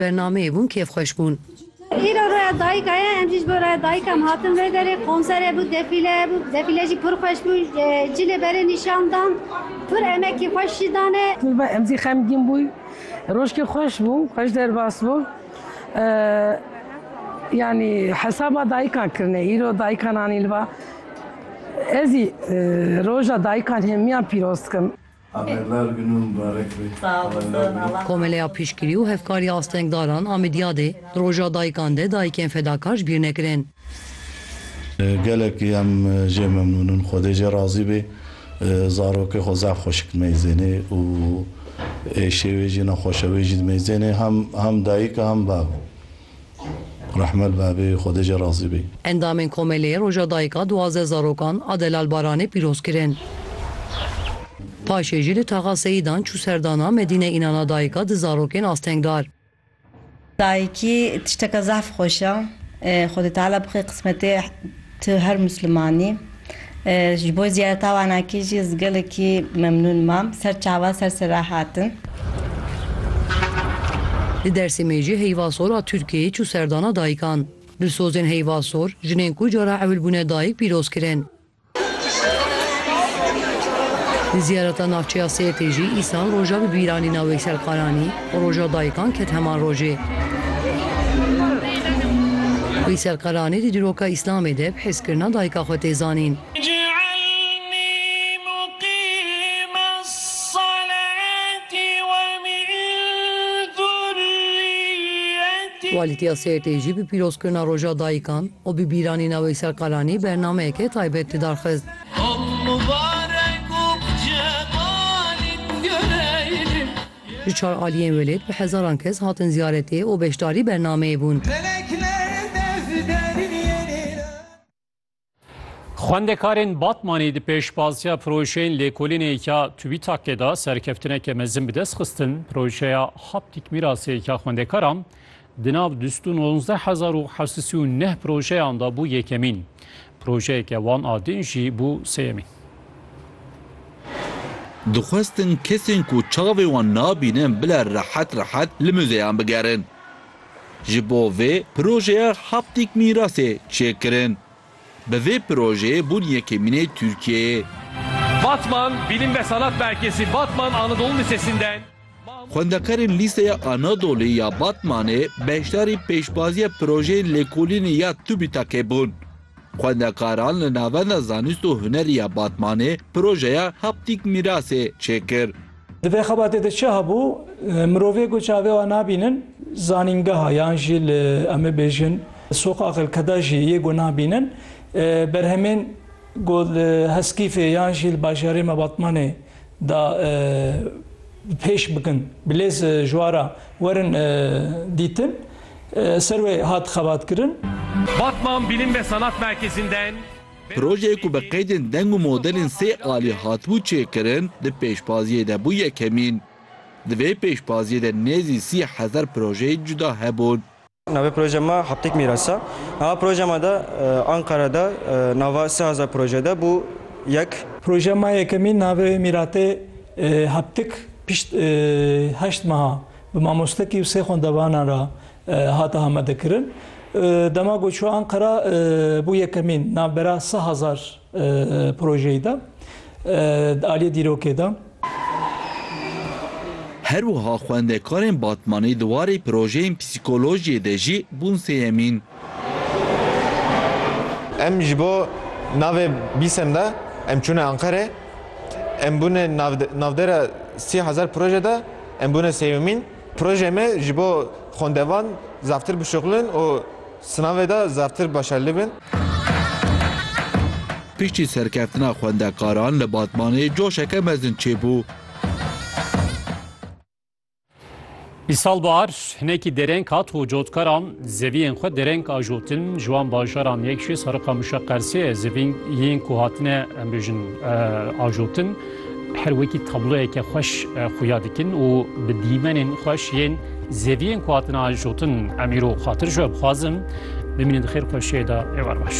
Bernameyê bûn kêfxweş bûn. Îro roya dayika ye em jî ji bo roya dayika em hatin vê derê. Konsere bû, defîle bû, defîle jî pir xweş bû. Cî li berê nîşan dan. Pir emekî xweş jî dane. Kurban em jî xemgîn bûyn. Rojkê xweş bû, xweş derbas bû. Yanî hesaba dayikan kirine. Îro dayikan anîn li ba. Ez jî roja dayikan hemiyan pîroz dikim. Amedler gund û mibarek be. Komeleya Piştgirî û Hevkariya Astengdaran a Midyadê, di Roja Dayikan de dayikên fedakar ji bîr nekirin. Gelekî em jê memnûn in. Xwedê jê razî bê. Zarokê xwe zaf xweşik dimeyzênê û êşê wê jî nexweş e. Wê jî dimeyzênê hem dayik e hem bav e. Rehmet be bê Xwedê jê razî bî. Endamên Komeleyê Roja Dayika duwazdeh zarokan a Delal Baranê pîroz kirin. Paşê jî li Taxa Seyidan çû serdana Medîne Înana Dayika di zarokên astengdar. Dayikî tişteke zehf xweş e. Xwedê Teala bixwe qismetê. Tu her musliman î. Ji bo ziyareta wanakî jî ez gelekî memnûn mam. Ser çavan ser sera hatin. Li Dêrsimê jî heyva sora Tirkiyeyê çû serdana dayikan. Dilsozên heyva sor, jinên ku cara ewil bûne dayik pîroz kirin. Li ziyareta navçeya Sêrtê jî îsal roja bibîranîna Weyselkaranî, Roja dayikan ket heman rojê. Wî serqalanî di dîroka Îslamê de bi hêzkirina dayika xwe tê zanîn. Walîtiya Sêrtê jî bi pîrozkirina Roja dayikan û bi bîranîna wê serqalanî bernameyeke taybet li dar xist. Ji çar aliyên welêt bi hezaran kes hatin ziyaretê û beşdarî bernameyê bûn. Xwendekarên Batmanî di pêşbaziya projeyên lêkolînê ya TÜBİTAK'ê de serkeftineke mezin bi dest xistin. Projeya Haptîk Mîrasê ya Xwendekaran Di nav du sed û nondeh hezar û heft sed û neh projeyan de bû yekemîn. Projeyeke wan a din jî bû sêyemîn. Dixwestin kesên ku çavê wan nabînin bile rehet rehet li muzeyan bigerin. Ji bo vê projeya Haptîk Mîrasê çê kirin. Bi vê projeyê bûn yekemînê Tirkiyeyê. Batman, Bilim ve Sanat Merkezi, Batman Anadolu Lisesi'nden. Xwendekarên Lîseya Anadolî ya Batmanê beşdarî pêşbaziya projeyên lêkolînê ya TÜBİTAK'ê bûn. Xwendekaran li Navenda Zanist û Hunerî ya Batmanê projeya Haptîk Mîrasê çêkir. Di vê xebatê de çi hebû? Mirovê ku çavê wan nabînin zanîngeha yan jî li em ê bêjin soqa xelkeda jî yê ku nabînin berhemên ku li Heskîfê yan jî li bajarê me Batmanê da pêş bikin bilêz ji wan re werin dîtin ser wê hat xebatkirin. Batman Bilim ve Sanat Merkezi'nden. Projeyê ku bi qeydên deng û modelên sê alî hatibû çêkirin di pêşbaziyê de bû yekemîn. Di vê pêşbaziyê de nêzî sî hezar projeyê cuda hebûn. Navê proje me Heptêk Mîras e. Nava proje me de Anqara de nava sê hezar proje de bû yek. Proje me yekemîn navê Mîratê Heptik pişt heşt meha bi mamostekî û sê xwendevanan re hate amadekirin. Dema ku çû Anqara bû yekemîn navbera sê hezar projeyî de di aliyê dîrokê de. Her wiha xwendekarên Batmanê di warê projeyên psîkolojiyê de jî bûn sêyemîn. Em ji bo navê BSEM de em çûne Anqerê, em bûne navdera sî hezar proje de em bûne sêyemîn. Projeyê me ji bo xwendevan zaftir bişuxulin û Sinavê de zevtir başerlî bin. Piştî serkeftina xwendekaran li Batmanê coşeke mezin çêbû. Îsal bahar hinekî dereng hat û cotkaran zeviyên xwe dereng ajotin ji wan bajaran yek jî Sariqamişa Qersê ye zeviyên ku hatine em bêjin ajotin. Her wekî tabloyeke xweş xuya dikin û bi dîmenên xweş yên zeviyên ku hatina jotin em îro xatir ji we bixwazim, bimînin di xêr xweşiyê de êwar baş.